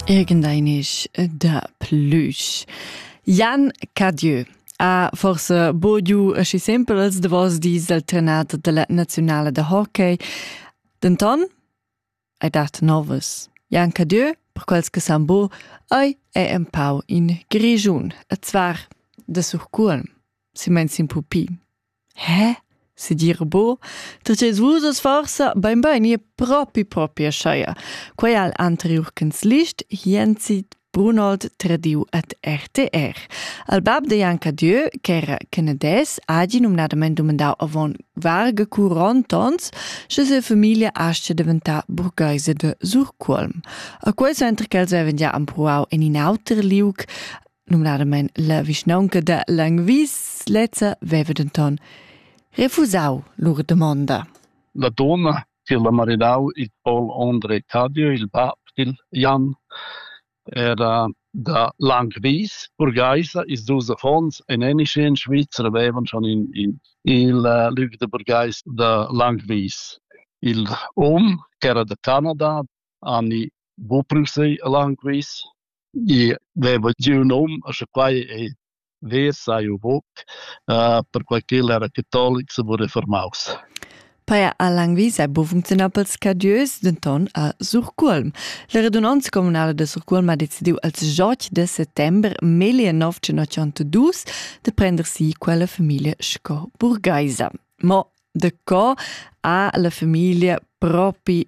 Irgendeinisch da plüsch. Jan Cadieu ha forse bogiu aschi sempel als davos dis dal trenat della nazionale da hockey. Denton hai dat novas. Jan Cadieu, per quels che san bo, ei è empau in grigiun, a zvar da surcuolm, si meins in pupi. Eh? Se dir bo, tg'es vus oz forsa bainbain ir propi propi ascheia. Quai al anteriur canzlist Jenzi Brunold tradiu at RTR. Al bab de Janka Dieu, ch'era canades, agi numnadament dumandau avon varga curonт ons, sche se familia asce deventà burgheise de Surculm. A quei center ch'els avevan già ampruau en in auter liug, numnadamein la vischnaunca da Langwies lezza veva denton refusau lur domonda. La donna tiel ha maridau il Paul André Cadio, il bab dil Jan, era da Langwies, burgheisa, ils dus affons en Enische in Schweizer avevan schon in, in, il uh, Lüg de burgheis da Langwies. Il um, che era da Canada, Anni Buprusei a Langwies, I veva giu ün hom e scha quai ei ver sai jeu buc, perquai ch'el era catolic se vul reformaus. Paja a Langwies è bu funcziunà pels cadieus, denton a Surcuolm. La radunanza communala da Surcuolm ha decidiu als 8 de settembre 1982 de prender si quella familia sco burgaisa. Mo de co ha la familia propi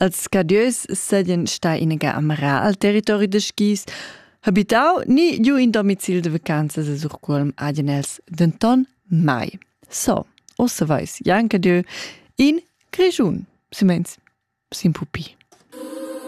Els scadieus seigien stai inaga a marar al territori da skis, habitau ni giu in domicil da vacanzas a Surcuolm hagen els denton mai. So, ossa veis Jan Cadieu in Grischun, silmeins sin pupi.